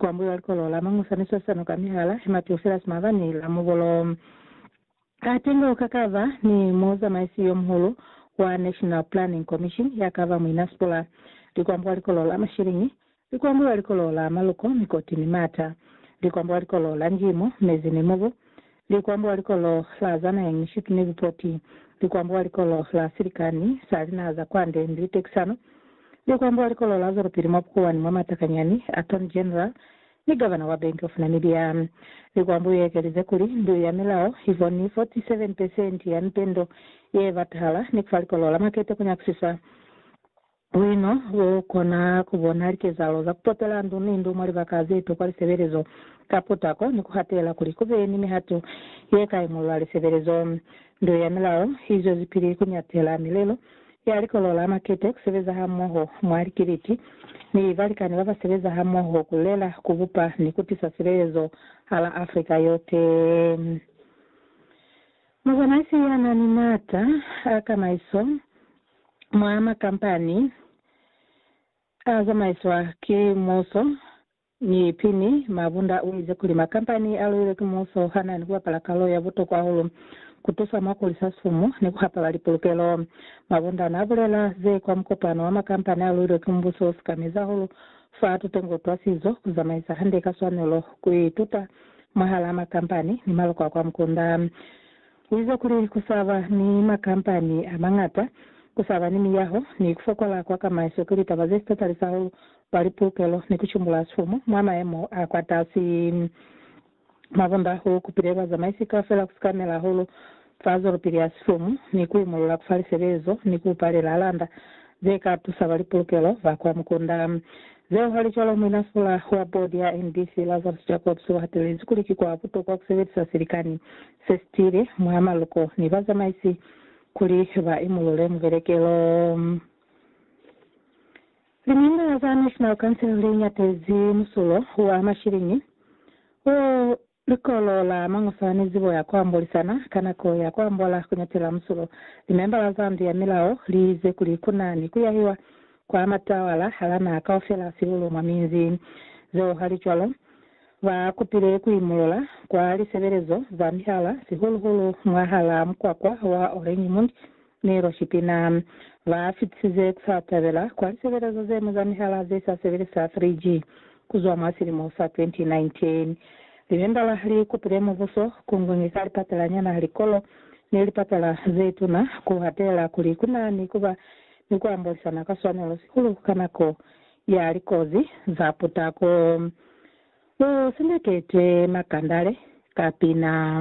Kuambuliwa likolo la mañusa ni swasano ka mihala ye matuselas mabani la mubolo. Atenga ukakava ni muzamaisi yomuhulu wa National Planning Commission yakava muina Sipula. Likuambuwa likolo la mashiliñi, likuambuliwa likolo la maluko, mikoti ni mata. Likuambuwa likolo la njimo, mezi ni mubu. Likwambo wa likolo la za nahe ñwi Sydney Lipoti, Likwambo wa likolo la silikani sa linaha za kwande ni litekisano, Likwambo wa likolo la zwelopili mwa bukuwani mwa matakanyani, Attorney General, ni Gavana wa Bank of Namibia. Likwambo ye ekelize kuli, Mbilu ya milao i fo ni 47 pesenti ya mitendo ye batahala ni kufa likolo la makete ku nyakisisa. Buino bo kona ku bona likezahalo za ku potela ndu ni ndu mwa libaka ze tokwa lisebelezo ka putako ni ku hatela kuli ku be ni mihato ye ka imolola lisebelezo. Ndu ya Milao i zwezipili ku nyatela milelo ya Likolo la Makete, ku sebeza hamoho mwa likiliti ni balikani ba ba sebeza hamoho ku lela, ku bupa ni ku tisa silelezo hala Afrika yote. Muzamaisi ya na ni maata a kamaiso mwa makampani a zamaiswa ki muuso ni Pini Mabunda u ize kuli makampani a luilwe ki muuso ha na ni ku bapala kalu ya butokwa hahulu ku tusa mwa ku hulisa sumu ni ku hapa bali pulukelo. Mabunda na bulela ze kwa mukopano wa makampani a luilwe ki mbuso u sika mezi hahulu fa tutengo twa sizo, ku zamaisa hande ka swanelo, ku ituta mwahalaa makampani ni maloko a kwa mukunda. U ize kuli ku sa ba ni makampani a mañata, ku sa ba ni miyaho, ni ku fokola kwa kamaiso ki litaba ze si tatalisa hahulu kwa lipulukelo ni ku cumbulula sifumu mwa mayemo a kwatasi. Mwa bunda, u kupile bazamaisi kaufela ku sikamela hahulu fa zwelopili ya silumu, ni ku imulula ku fa lisebezo, ni ku palela landa ze ka tusa ba lipulukelo ba kwa mukunda. Zeo halicwalo, muinasula wa bodi ya NBC, Lazarus Jacobs, u hatelezi kuli ki kwa butokwa ku sebelisa silikani se si tiile mwa maluko ni bazamaisi kuli ba imulule mubelekelo. Limimbala za National Council li ñatezi musulo wa mashiliñi o Likolo la Mañoswa ni Zibo ya Kuambolisana ka Nako ya Kuambola Kuñatela Musulo, limembala za Ndu ya Milao li ize kuli ku na ni ku yahiwa kwa matawala hala naha kaufela sihulu mwa minzi. Zeo halicwalo, ba kupile ku imulula kwa lisebelezo za mihala, sihulu-hulu mwahalaa mukwakwa wa Oranjemund, Mi lwa Shipina ba fitisize kusa tabela kwa lisebelezo ze ñwi za mihala ze sa sebelisa 3G kuzwa mwa silimo sa 2019. Limembala li kupile mubuso ku ngongeka lipatala nyana, likolo, ni lipatala ze tuna ku hatela kuli ku na ni kuba ni ku ambolisana ka swanelo sihulu ka nako ya likozi za putako. Lu sendeketwe makandale ka pina.